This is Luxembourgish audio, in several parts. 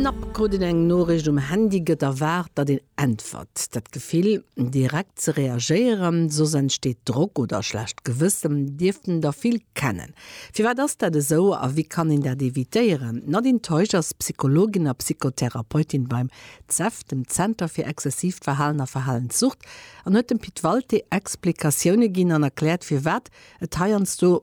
Knapp krut een eng Noriicht um Handy, gëtt erwaart, datt een äntwert. Dat Gefill, direkt ze reagéieren, soss entsteet Drock oder schlecht Gewëssen, dierften der vill kennen. Firwat ass dat esou a wéi kann een dat evitéieren? D'Nadine Teusch ass Psychologin a Psychotherapeutin beim ZEV, dem Zenter fir exzessiivt Verhalen a Verhalenssucht, an huet dem Pit Walté Explikatioune ginn an erkläert, firwat et heiansdo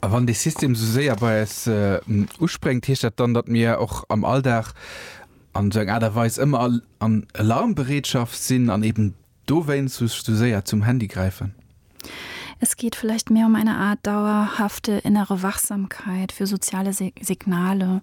A wann dee System esou séier bei eis uspréngt, heescht dat dann, datt mir och am Alldag an esou eng Aart a Weis ëmmer an Alarmbereetschaft sinn an eben dowéinst esou séier zum Handy gräifen? Es geht vielleicht mehr um eine Art dauerhafte innere Wachsamkeit für soziale Signale.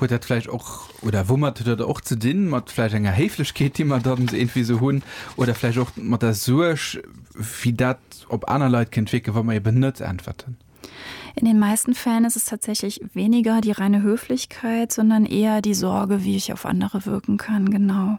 Huet dat vläicht och oder woumat huet dat och ze dinn, mat vläicht enger Héiflechkeet, déi mer dann irgendwie esou hunn oder vläicht och mat der Suerg, wéi dat op aner Leit kéint wierken, wa mer eben net äntwerten? In den meisten Fällen ist es tatsächlich weniger die reine Höflichkeit, sondern eher die Sorge, wie ich auf andere wirken kann. Genau.